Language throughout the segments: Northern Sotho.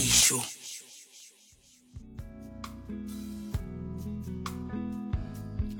dišo.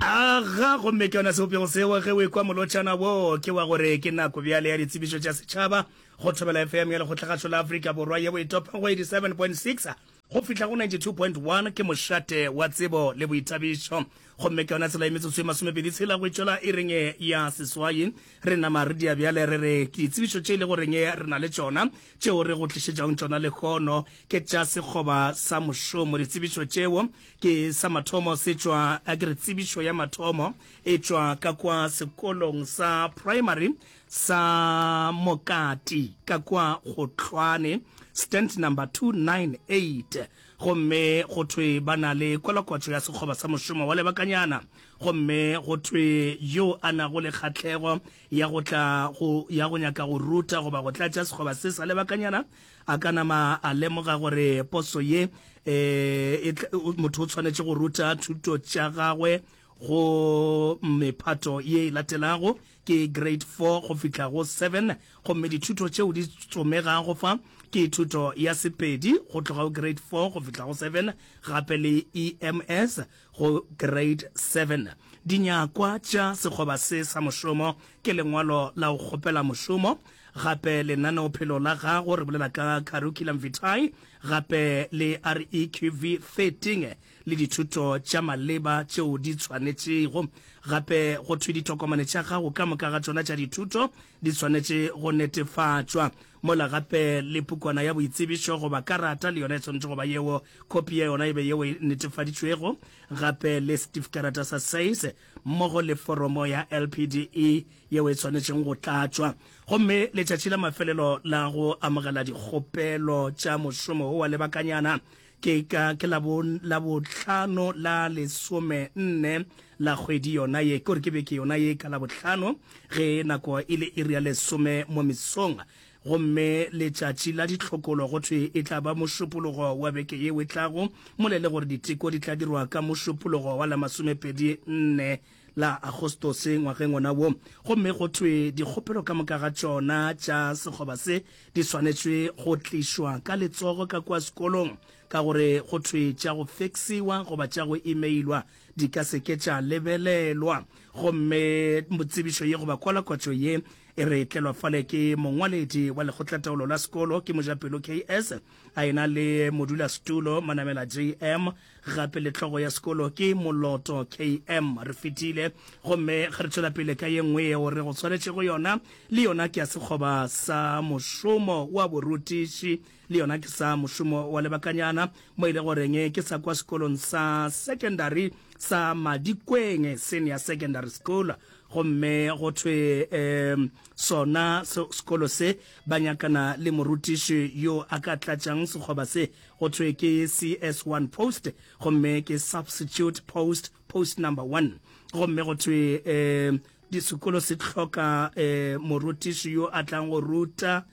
aga gomme ke yona sebopego seo ge o ekwa molotšana wo ke wa gore ke nako bjale ya ditsebišo tša setšhaba go thobela fm ya lekgotlagašo la afrika borwa yeo e topa go 87.6 go fihla go 92.1 ke mošate wa tsebo le boithabišo gomme ke yona tsela e metsotso e masomepedi tshela go itšwela e reng ya seswai re nama re dia bjale re re ke ditsebišo tše e le goreng re na le tšona Tšeo re go tlišetšago tšona lehono ke tša sekgoba sa mošomo. Ditsebišo tšeo ke sa mathomo se tšwa ke re tsebišo ya mathomo e tšwa ka kwa sekolong sa primary sa Mokati ka kwa Gotlhwane stand number 298 gomme go thwe ba na le kwalakwatšo ya sekgoba sa mošomo wa lebakanyana gomme go thwe yo a nago le kgahlego ya go tla go ya go nyaka go ruta goba go tlatša sekgoba se sa lebakanyana a ka nama a lemoga gore poso ye um motho o tshwanetše go ruta thuto tša gagwe go mephato ye e latelago ke grade 4 go fihla go 7 gomme dithuto tšeo di tsomegago fa ke thuto ya sepedi go tloga go grade 4 go fihla go 7 gape le ems Go Grade Seven, dinyakwa tša sekgoba se sa mošomo ke lengwalo la go kgopela mošomo, gape lenaneophelo la gago, re bolela ka Curriculum Vitae, gape le REQV 13 le dithuto tša maleba tšeo di tshwanetšego. Gape go thwe ditokomane tša gago ka moka ga tšona tša dithuto Di swanetše go netefatšwa. Mola gape le pukwana ya boitsebišo goba karata le yona e swanetše go ba yeo, khopi ya yona e be yeo e netefaditšwego gape le setifkarata sa SACE mmogo le foromo ya LPDE yeo e swanetšeng go tlatšwa. Gomme letšatši la mafelelo la go amogela dikgopelo tša mošomo wo wa lebakanyana Ke ka ke la bo la bohlano la lesome nne la kgwedi yona ye, ke gore ke beke yona ye ka la bohlano ge nako e le iri ya lesome mo mesong. Gomme letšatši la ditlhokolo go thwe e tla ba mošupologo wa beke yeo e tlago, mola e le gore diteko di tla dirwa ka mošupologo wa la masomepedi nne la Agostose ngwageng ona wo, gomme go thwe dikgopelo ka moka ga tšona tša sekgoba se di swanetšwe go tlišwa ka letsogo ka kua sekolong, ka gore go thwe tša go feksiwa goba tša go imeilwa di ka se ke tša lebelelwa. Gomme tsebišo ye goba kwalakwatšo ye e re tlelwa fale ke mongwaledi wa lekgotlataolo la sekolo, ke mojapelo KS, a ena le modulasetulo Manamela JM, Gape le hlogo ya sekolo ke Moloto KM. Re fetile gomme ga re tšwela pele ka ye nngwe yeo re go swanetše go yona, le yona ke ya sekgoba sa mošomo wa borutiši, le yona ke sa mošomo wa lebakanyana, mo e le goreng ke sa kwa sekolong sa sekendari sa Madikweng Senior Secondary School. Gomme go thwe um sona sekolo se ba nyakana le morutiši yo a ka tlatšang sekgoba se Go thwe ke CS1 post gomme ke substitute post, post number one. Gomme go thwe um disekolo se hloka um morutiši yo a tlang go ruta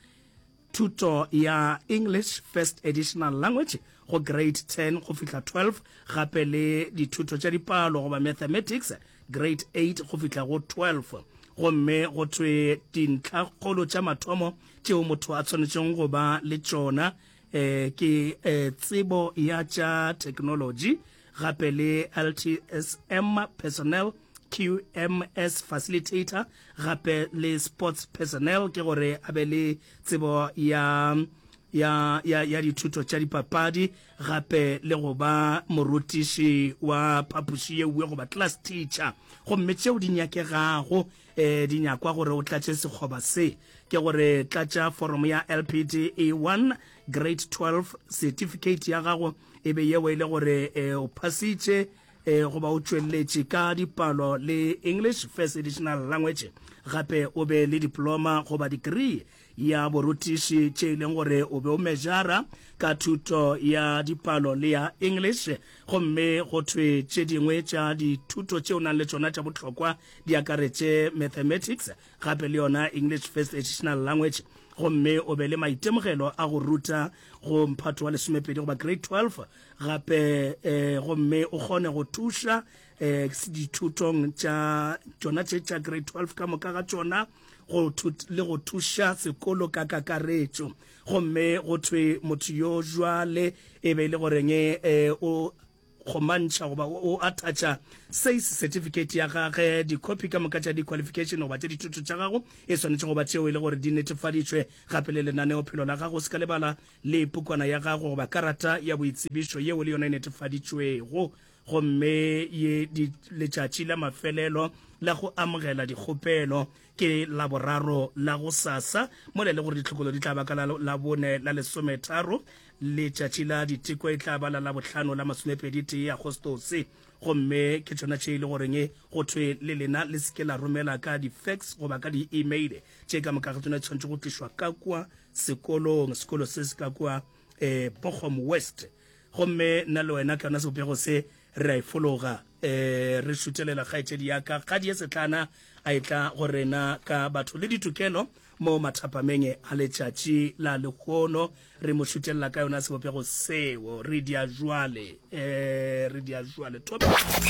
thuto ya English First Additional Language go grade 10 go fihla 12 gape le dithuto tša dipalo goba mathematics grade 8 go fihla go 12. Gomme go thwe dintlhakgolo tša mathomo tšeo motho a swanetšego go ba le tšona eh, ke eh, tsebo ya tša technology gape le ltsm personnel qms facilitator gape le sports personnel ke gore a be le tsebo ya ya, ya, ya dithuto tša dipapadi gape le go ba morutiši wa phapoši ye uwe goba class teacher gomme tšeo di nyakegago e di nyakwa gore o tlatše sekgoba se ke gore tlatša foromo ya lpd e 1 grade 12 certificate ya gago e be yeo e le gore e, o phasitše e, goba o tšweletše ka dipalo le english first additional language gape o be le diploma goba degree ya borutiši tše e leng gore o be o mejara ka thuto ya dipalo le ya English, gomme go thwe tše dingwe tša dithuto tše o nang le tšona tša bohlokwa di akaretše Mathematics gape le yona English First Additional Language, gomme o be le maitemogelo a go ruta go mphato wa lesomepedi goba Grade 12 gape eh, gomme o kgone go thuša eh, dithutong tša tšona tše tša Grade 12 ka moka ga tšona. go le go thuša sekolo ka kakaretšo gomme go thwe motho yo jwale e be e le goreng um o kgomantšha goba o attactšha says certificate ya gage dikhopi ka moka tša di-qualification goba tša dithuto tša gago e swanetše goba tšeo e le gore di netefaditšwe gape le lenaneo phelo la gago se ka lebala le pukwana ya gago goba karata ya boitsebišo yeo le yona e netefaditšwego gomme ye di letšatši la mafelelo la go amogela dikgopelo ke laboraro la go sasa mola e le gore ditlhokolo di tla ba ka la bone la lesometharo letšatši la diteko e tla ba la labohlano la masomepedi tee agostose gomme ke tsona tše e le goreng go thwe le lena le seke la romela ka di-fax goba ka di-email tše ka moka ga tsona tshwanetse go tlišwa ka kwa sekolong sekolo se se ka kwa um eh, bochom west Gomme nna le wena, tlona sebopego se, re a e fologa. Ee, re šutelela kgaetšedi ya ka. Kgadi ye setlana a e tla go rena ka batho le ditokelo mo mathapameng a letšatši la lehono. Re mo šutelela ka yona sebopego seo. Re di a jwale. Ee, re di a jwale. Thobela.